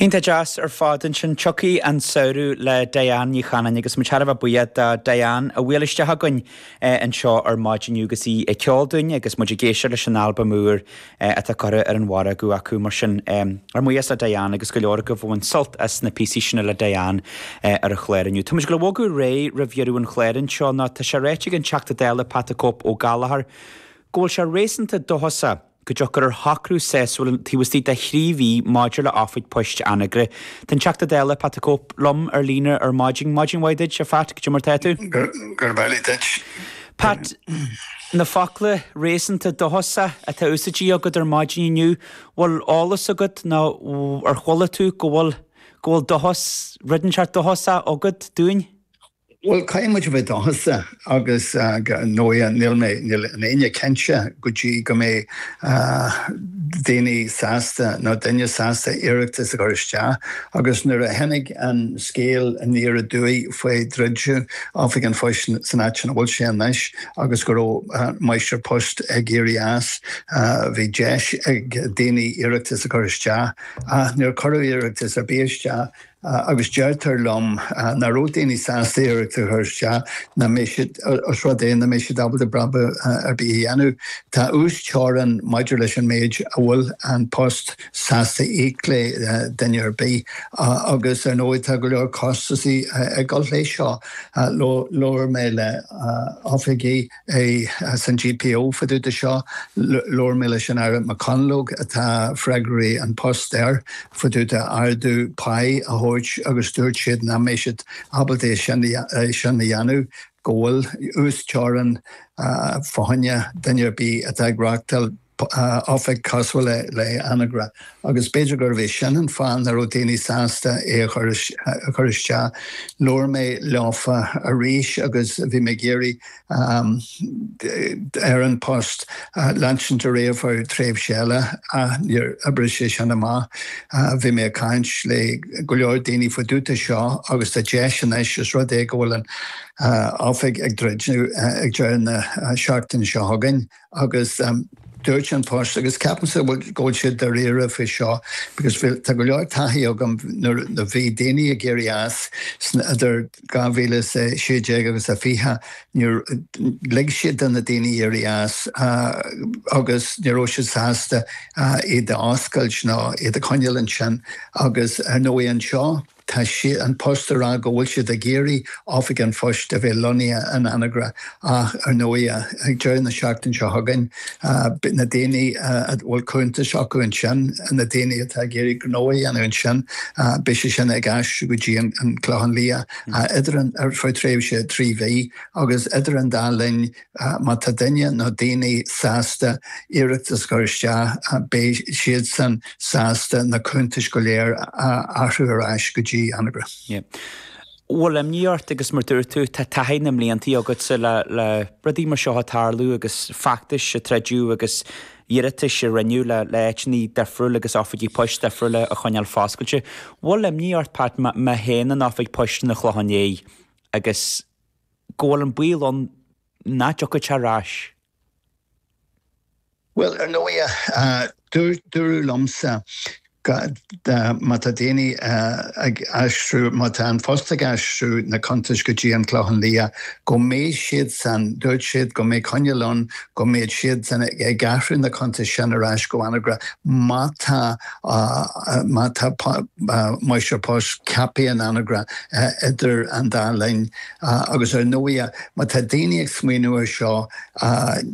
Iontach deas ar fad. Ansin tiocfaidh an samhradh le Diane Ní Chanainn agus muid thar a bheith buíoch do Diane a bhuail isteach againn anseo ar maidin inniu agus í ag ceol dúinn agus muid ag éisteacht leis an albam úr atá curtha ar an mhargadh acu. Mar sin, ár mbuíochas le Diane agus go leor agaibh a bhain sult as na píosaí sin le Diane ar an chlár inniu. Táimid ag gabháil a bhogadh ar aghaidh roimh dheireadh an chláir anseo nó tá sé ráite ag an Teachta Dála Pat 'The Cope' Ó Gallchóir go bhfuil sé réasúnta dóchasach, go dtiocfar ar shocrú sásúil taobh istigh de thrí mhí maidir le oifig poist Anagaire. Tá an Teachta Dála Pat the Cope liom ar líne ar maidin. Maidin mhaith duit, a Phat, cad é mar tá tú. Gurb amhlaidh duit. Pat, na focla réasúnta dóchasach atá úsáidte agat ar maidin inniu, bhfuil eolas agat nó ar chuala tú go bhfuil, go bhfuil dóchas, rud inteacht dóchasach agat dúinn? Bhuel, caithfidh muid a bheith dóchasach agus ar ndóighe níl mé, níl éinne cinnte go dtí go mbeidh daoine sásta nó duine sásta iarratas a chur isteach agus nuair a tháinig an scéal aniar aduaidh faoi dhruid Oifig an Phoist san áit sin a bhfuil sé anois agus go raibh an Máistir Poist ag éirí as, bhí deis ag daoine iarratas a chur isteach ach níor cuireadh iarratas ar bith isteach. agus deirtear liom nach raibh daoine sásta iarratas a chur isteach nach mbeadh siad, os rud é nach mbeadh siad ábalta brabús ar bith a dhéanamh. Tá uas-teorainn maidir leis an méid a bhfuil An Post sásta a íoc le duine ar bith agus ar ndóigh tá go leor costasaí ag dul leis seo. Labhair mé le hoifigigh. sa GPO fá dtaobh de seo, labhair mé leis an Aire McConalogue, atá freagracht An Post air, fá dtaobh de ardú pá a thabhairt agus dúirt siad nach mbeadh siad ábalta é sin a dhéanamh, go bhfuil uasteorainn fá choinne, duine ar bith atá ag reáchtáil Oifig cosúil le Anagaire agus b'fhéidir gurbh é sin an fáth nach raibh daoine sásta é a chur isteach. Labhair mé leofa arís agus bhí mé ag iarraidh ar An Post leanstan ar aghaidh fá choinne tréimhse eile ach níor oibrigh sé sin amach. Bhí mé ag caint le go leor daoine fá dtaobh de seo agus tá deis anois os rud é go bhfuil an Oifig ag druidim ag deireadh na seachtaine seo chugainn. Agus dúirt An Post, agus ceapaimse go bhfuil siad dáiríre faoi seo, because tá go leor taithí agam nuair a bhí daoine ag éirí as sna, idir 2016 agus a 20, lig siad do na daoine éirí as agus ní raibh siad sásta iad a oscailt ná iad a choinneáil ansin. Agus ar ndóigh anseo, Tá siad An Post ag rá go bhfuil siad ag iarraidh Oifig an Phoist a bheith lonnaithe in Anagaire ach ar ndóigh ag deireadh na seachtain seo chugainn beidh na daoine a bhfuil cuntais acu ansin, na daoine atá ag iarraidh gnó a dhéanamh ansin, beidh siad sin ag aistriú go dtí an Clochán Liath idir an, ar feadh tréimhse trí mhí agus idir an dá linn Má tá duine nó daoine sásta iarratas a chur isteach, beidh siadsan sásta na cuntais go léir a athrú ar ais go dtí Anagaire. Bhfuil imní ort agus mar dúirt tú tá taithí na mblianta agatsa le rudaí mar seo a tarlú agus feachtais a troideadh agus iarratais a rinneadh le áiteanna difriúil agus oifigí poist difriúla a choinneáil foscailte. Bhfuil imní ort, Pat, má théann an Oifig Poist chun an Chlocháin Léith agus. go bhfuil an baol ann nach dtiocfaidh sé ar ais. Bhuel, ar ndóighe, dúradh liomsa má tá daoine ag aistriú, má tá an Post ag aistriú na cuntais go dtí an Clochán Liath, go mbeidh siad san, dúirt siad go mbeidh coinníoll ann go mbeidh siad san ag athrú na cuntais sin ar ais go hAnagaire má tá, Má tá máistir poist ceaptha in Anagaire idir an dá linn, agus ar ndóighe má tá daoine ag smaoineamh ar seo,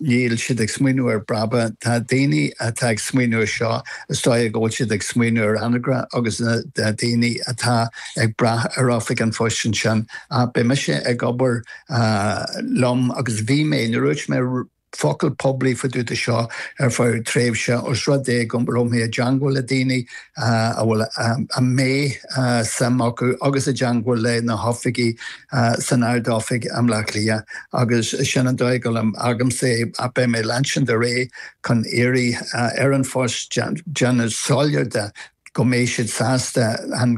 níl siad ag smaoineamh ar bhrabach, tá daoine atá ag smaoineamh ar seo, is dóighe go bhfuil siad ag smaoineamh ar Anagaire agus na daoine atá ag brath ar Oifig an Phoist ansin. Beidh mise ag obair liom agus bhí mé, nuair a dúirt mé, focal poiblí fadúda seo ar feadh tréimhse os rud é go raibh mé i dteangmháil le daoine a bhfuil a mbeidh suim acu agus i dteangmháil le na hoifigigh san Ard-Oifig i mBleá Cliath agus sin an dóigh a n-oibrímsa é. Beidh mé ag leanstan ar aghaidh chun iarraidh ar an phost déanamh siúráilte go mbeidh siad sásta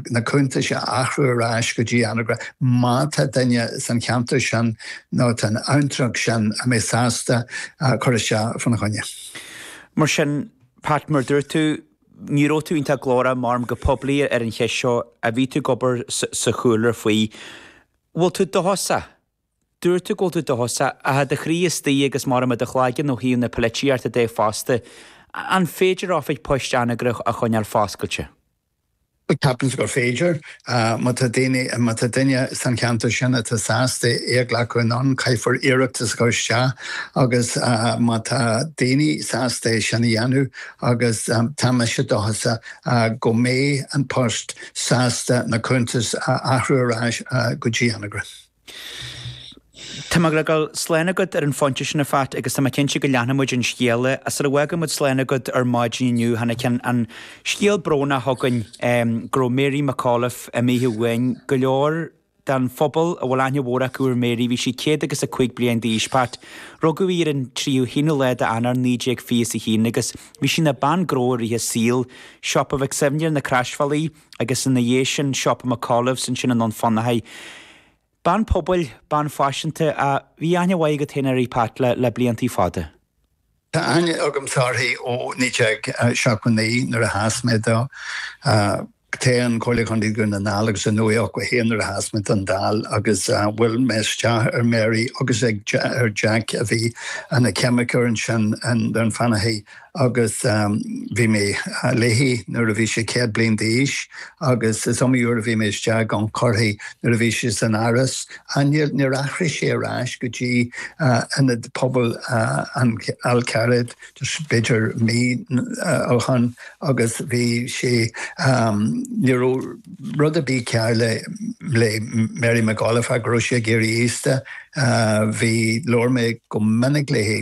na cuntais a athrú ar ais go dtí Anagaire má tá duine san cheantar sin nó san abhantrach sin a mbeidh sásta cur isteach fá na choinne. Mar sin, Pat, mar dúirt tú, ní raibh tú iontach glórach maram go poiblí ar an cheist seo ach bhí tú ag obair sa chúlra faoi. Bhfuil tú dóchasach? Dúirt tú go bhfuil tú dóchasach i do chroí istigh agus maram i do chloigeann ó thaobh na poilitíochta de fosta. An féidir oifig poist Anagaire a choinneáil foscailte? Ceapaimse gur féidir. Má tá daoine, má tá duine san cheantar sin atá sásta é a ghlacadh anonn, caithfear iarratas a chur isteach agus má tá daoine sásta é sin a dhéanamh agus tá mise dóchasach go mbeidh An Post sásta na cuntais a athrú ar ais go dtí Anagaire. Tá mé ag fágáil slán agat ar an phointe sin, a Phat, agus tá mé cinnte go leanfaidh muid an scéal. Sar a bhfágfaidh muid slán agat ar maidin inniu, tháinig an scéal brónach chugainn go raibh Mary McAuliffe imithe uainn. Go leor den phobal a bhfuil aithne mhór acu ar Mary, bhí sí céad agus a cúig bliain d'aois, Pat. Rugadh í ar an tríocha haonú lá d'Eanáir naoi déag fiche a haon agus bhí sí ina bean gnó i rith a saoil. Siopa Mhic Suibhne ar na Croisbhealaí. agus ina dhiaidh sin siopa McAuliffes, ansin i nDún Fionnachaidh. Bean pobail, bean faiseanta, a bhí aithne mhaith agat féin uirthi, Pat, le blianta fada. Tá aithne agamsa uirthi ó 1979 nuair a sheas mé don toghchán Comhairle Chontae Dhún na nGall agus i 1981 nuair a sheas mé don Dáil agus bhuail mé isteach ar Mary agus ar Jack a bhí ina cheimiceoir ansin i nDún Fionnachaidh. agus bhí mé léi nuair a bhí sí céad bliain d'aois agus is iomaí uair a bhí mé istigh ag cuartaíocht nuair a bhí sí san áras ach níor athraigh sí ar ais go dtí Ionad Pobail an Fhalcarraigh b'fhéidir mí ó shin agus bhí sí ní raibh rud ar bith cearr le le Mary McAuliffe ach go raibh sí ag éirí aosta bhí labhair mé go minic léi